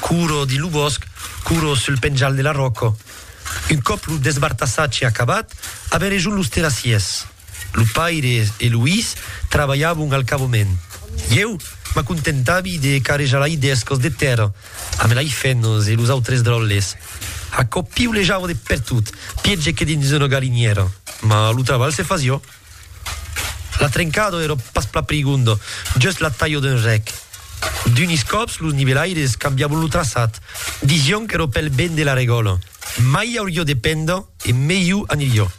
Couro dins lo bòsc, couro sul penjal de la ròca. Un còp lo desbartassatge acabat, avèn rejunt los terrassiers. Lo paire e lo his trabalhavon al cavament. Ieu m'acontentavi de carrejar lai d'escos de tèrra amb lai fenos e los autres dròlles. Aquò piulejava de pertot, pièger que dins una galinièra, mas lo trabalh se fasiá. La trencado ero pas pla prigonda, just la talha d'un rec. D'unis còps los nivelaires cambiabon lo traçat, disión qu'ero pel ben de la regòla, mai aurió de penda e melhó anirió.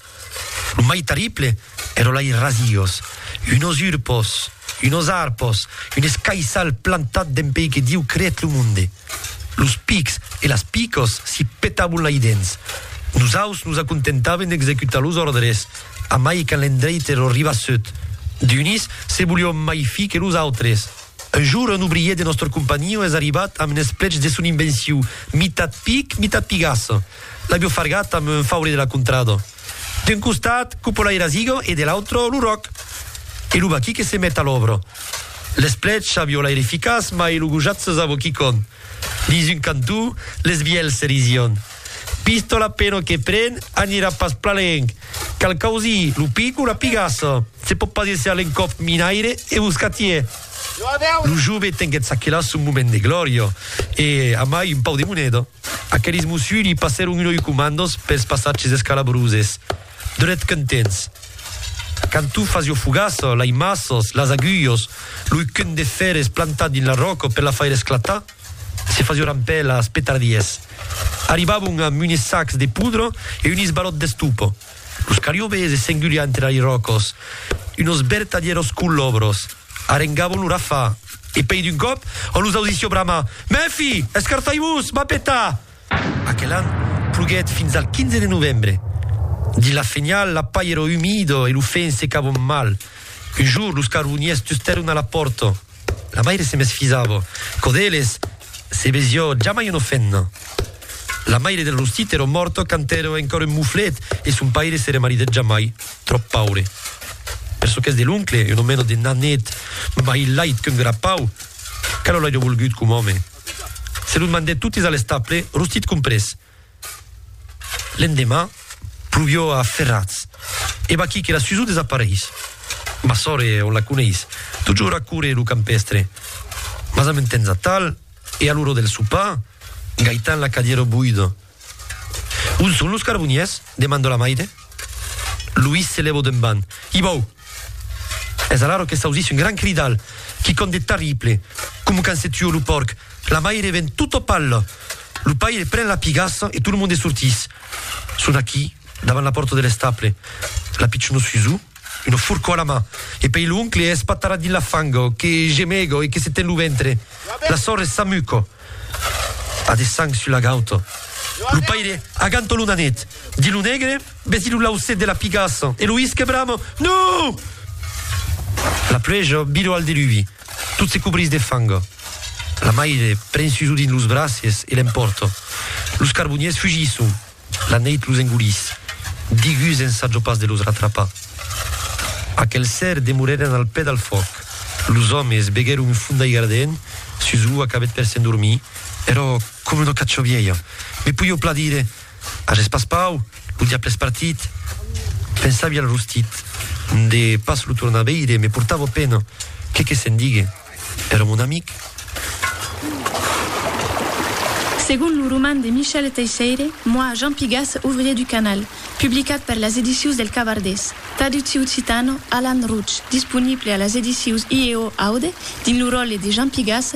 Lo mai terrible ero lai rasiós, unos urpos, unos arpos, un escaissal plantat dempeí que Diu creèt lo monde. Los pics e las picos si petabon lai dens. Nosaus nos acontentaven d'executar los òrdres, amai quand l'endreite lo ribassut. D'unis se volion mai fi que los autres. Un jour un obrier de nòstre companhion es arribat amb n'esplech de son invenciu, mitat pic, mitat pigasse. L'avio fargat amb un faure de la contrada. D'un costat, Cupola e Razigo e de l'autro, lo Ròc e lo Baqui que se met a l'òbra. L'esplècha viola er eficaç mai lo gojat se zavo quicon. Dins un cantó, les vielhs se rision. Pistola peno que pren, anirà pas plan lenc. Cal causir lo pic o la pigassa. Se pòt pas èsser l'encòp minaire e boscatier. Lo jove tenguèt çaquelà son moment de glòria e, amai, un pau de moneda. Aqueles Mussuli passèron un oi comandos pels passatges escalabroses, dret contents. Quand tu fas jo fogaça, lai masses, las agulhos, loi cun de fèrres plantat dins la ròca per la faire esclatar, se fasió rampèlas, petardies. Arribavon amb unes sacs de poudra e un isbalòt d'estopa. Los cariobes e s'engulián entre airòcos, unos vertadièros colòbros, arengavon lo rafà, e pei d'un còp, en los audicio bramar, Mèfi! Escartai-vos! M'a petar! Aquel an, ploguèt fins al 15 de novembre. Dins la fenhal, la pair era umida e lo fenc secavon mal. Un jorn, los carboniers tustèron a la pòrta. La maire se mesfisava. Quò d'eles, se besiò jamai una femna. La maire del Rostit èra mòrta quand èra encòra un moflet e son paire se remaridèt jamai, tròp paure. Per çò qu'es de l'oncle, una mena de nanet, mai lait qu'un grapau, que lo l'airia volgut com òme. Se los mandèt totes a l'estable, Rostit comprés. L'endemà, pluvió a ferrats. E vaquí que la Suzu desapareis. Ma sòre, on la coneis? Totjorn a córrer lo campèstre. Mas amb un temps atal, e a l'ora del sopar, Gaitan la cadièra boida. On son los carboniers? demanda la maire. Luís se lèva d'un banh. I vau! Es alaro que s'ausís un gran cridal, quicòm de terrible, coma quand se tua lo pòrc, la maire ven tota palla, lo paire pren la pigassa e tot lo monde sortís. Son aquí, davant la pòrta de l'estable, la pichona Suzu, una forca a la man, e pei l'oncle es patarat dins la fanga, que gemega e que se ten lo ventre, la sòrre s'amuca, a de sang sus la gauta, lo paire aganta lo nanet, di lo negre, Vesi lo laucet de la pigassa e lo isque brama, Non! La pluèja vira al deluvi, tot se cobrís de fanga. La maire pren sus Odin los braces e l'empòrta. Los carboniers fugisson, la neit los engolís. Digus ensàja pas de los ratrapar. Aquel ser demorèren al pè del fuòc. Los òmes beguèron un fum d'aiga ardent sus ua cabet per s'endormir. Èra coma una cacha vièlha. Me poi au pla dire, Ath espaspau, lo diable es partit. Pensavi al rostit, de pas lo tornar veire me portava pena, que que se'n digue, èra mon amic. Segon lo roman de Michel Teisseire, Moi, Jean Pigas, ouvrier du canal, publicat per las Edicius del Cavardés, traductiu occitano, Alan Routch, disponible a las Edicius IEO Aude dins lo ròle de Jean Pigas,